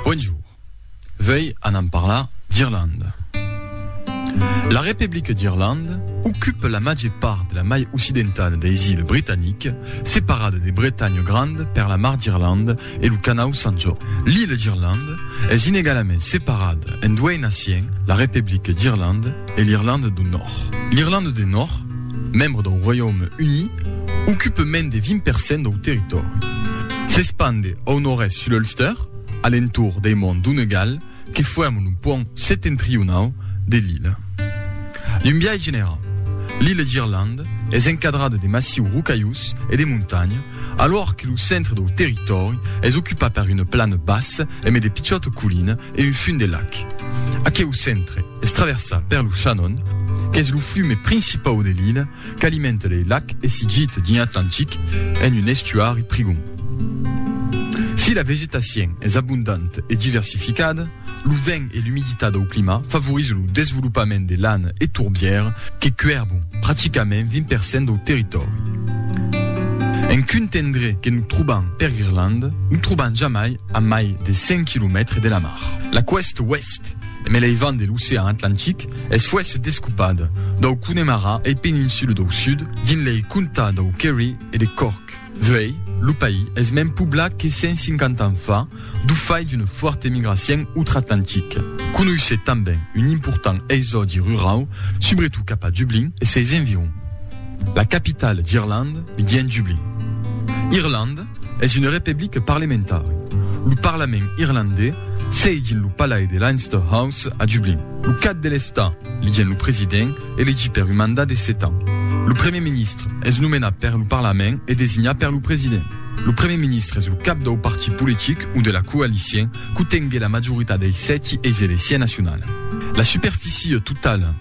Bonjour. Vei anam parlar d'Irlanda. La Republic d'Irlanda ocupe la màger part de la mai occidentada deis iles Britaniques, separada de Bretanha Granda per la mar d'Irlanda e lo canau Sant Jorn. L'ile d'Irlanda es inegalament separada en duei naciens, la Republic d'Irlanda, e l'Irlanda do Nòrd. L'Irlanda de Nòrd, membre dau Roiaume Uni, ocupe mens de 20 per cent dau territòri. S'espande au nòrd-èst sul Ulster, a l'entorn dei monts Donegal que fuèrman lo puònt setentrionau de l'illa. D'un biais generau, l'illa d'Irlanda es encadrada de massius rocaius e de montanhas, alhora que lo centre dau territòri es ocupat per una plana bassa e mai de pichòta colina e un fum de lac. Aqueu centre, Es traversat per lo Shannon, qu'es lo flume principau de l'illa qu'alimenta lei lacs e s'i gita dins l'Atlantic en un estuari prigond. Si la vegetacion es abondanta e diversificada, lo vent e l'umiditat dau clima favorizan lo desvolopament de lana e torbièr que cuèrbon practicament 20 per cent dau territòri. En quint endrech que nos trobam per Irlanda, nos trobam jamai a mai de 100 quilomètres de la mar. La coèsta oèst, Mès lei vent de l'ocean Atlantic es fuèsse descopat dau Connemara e peninsula dau sud dins lei comtats dau Kerry e de Cork. Vuei, lo país es mens poblat que 150 ans fa du fait d'una fuòrta emigracion outra-Atlantic. Conoissèt tanben un important exòdi rurau, subretot cap a Dublin e seis environs. La capitala d'Irlanda li dien Dublin. Irlanda. Es una republica parlementari. Lo parlament irlandés siègi en lo palais de Leinster House a Dublin. Lo cap de l'estat, ligen lo president, elegi per un mandat de sèt ans. Lo primièr ministre es nomenat per lo parlament e designat per lo president. Lo primièr ministre es lo cap dau partit politic o de la coalicion qu'o tengue la majoritat dei sèti eis de l'esia nacionala. La superficie totala